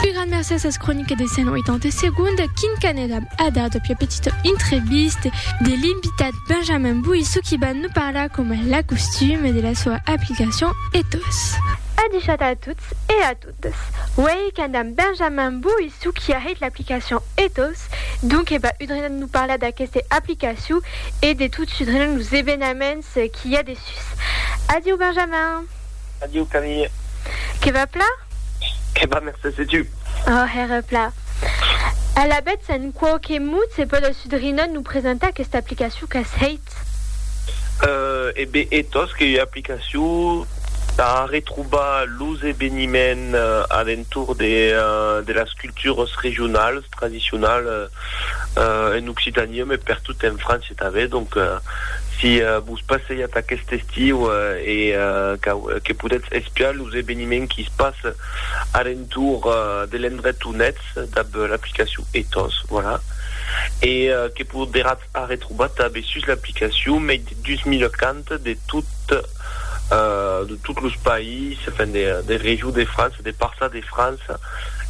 Un gran merci a ses croniques de 180 segondes, Quim Caneda a dat a pia petita entrevista de l'invitat Benjamin Bouissou qui va nous parlar com a la costume de la sua aplicacion Ethos. A dichat a tots e a totes, uèi qu'andam Benjamin Bouissou qui a hèit l'aplicacion Ethos, donc e va udrina nous parlar d'aqueste aplicacion e de tot sudrina los evenaments qui i a dessus. Adieu Benjamin! Adieu, Camille. Que va plat? Que va, Mercés, e tu? Ò, hèra plat. Alavetz, en quò que mot se pòt al sudrinòt nous presentar aquesta aplicacion qu'as hèit? E be, e tòs qu'ei ua aplicacion tà retrobar los eveniments a l'entorn de las cultures regionales, tradicionales en Occitania, mès pertot en França. Tanben, donc, si vos passeiatz aquest estiu e que podètz espiar los eveniments qui se passe alentour de l'endret on ètz dab l'aplicacion Ethos, voilà, e que poderatz arretrobar tanben sus l'aplicacion mei de 2000 cants de tot los païses, enfin, de regions de França, de parças de França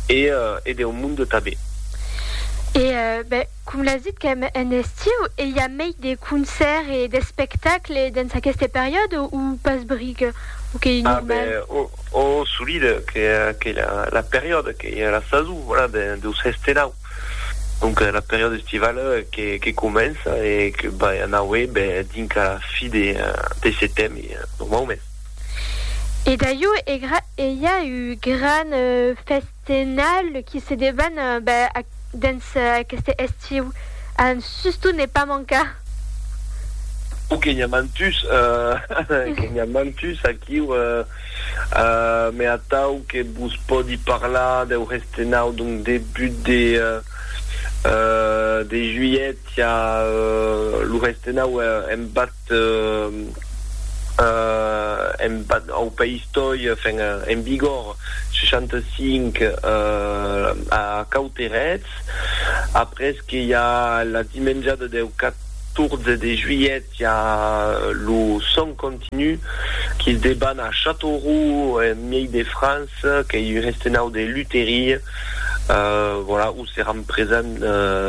e deu monde tanben. E ben, Com l'as dit qu'èm en estiu e i a mei de concèrt e d'espectacle dens aqueste periòde o pas bric? O qu'ei normal? A ben, o solide qu'ei la periòde, qu'ei la sason, voilà, deus hestenau. Donc la periòde estivale que comença e que vai anaue ben dinc a la fi de setem normaument. E d'aieu, ei a eu gran fèsta? De nòl qui se deban dens aqueste estiu un susto ne pas mancar. Ò que n'i-a mantus, que n'i-a mantus aquiu, me atau que vos pòdi parlar deu restenau d'un debut de de juilhet, i-a lo restenau en bas. Eth embat au País Toi, enfin en vigor 65 a Cauterets, après que i a la dimenjada deu 14 de juilhet i a lo sòn continu que's deban a Châteauroux en miei de France qu'ei un estenau de lutherie, voilà, où seran presents,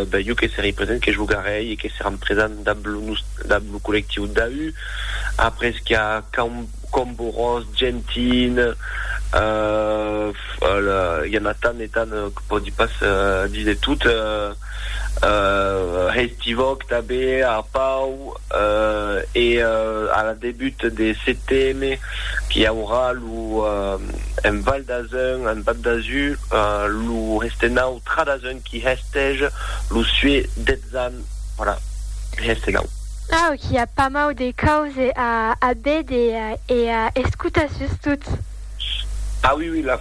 ben jo que serei present, que jogarei e que seran presents dab lo nus. dab lo collectiu Dahu, après qu'a Cambo Ros, Gentin, i a na tant e tant que pòdi pas díser tot, Hestivòc tanben, Arpau, e a la debut de CTM qu'i aurà lo en Val d'Azun, en Bab d'Azur, lo Hestenau Tra d'Azun. Qui hestège lo sué detzan para hèste nau. Au qui a pamau de cause a a bede e a escuta sustot. Ah oui oui la.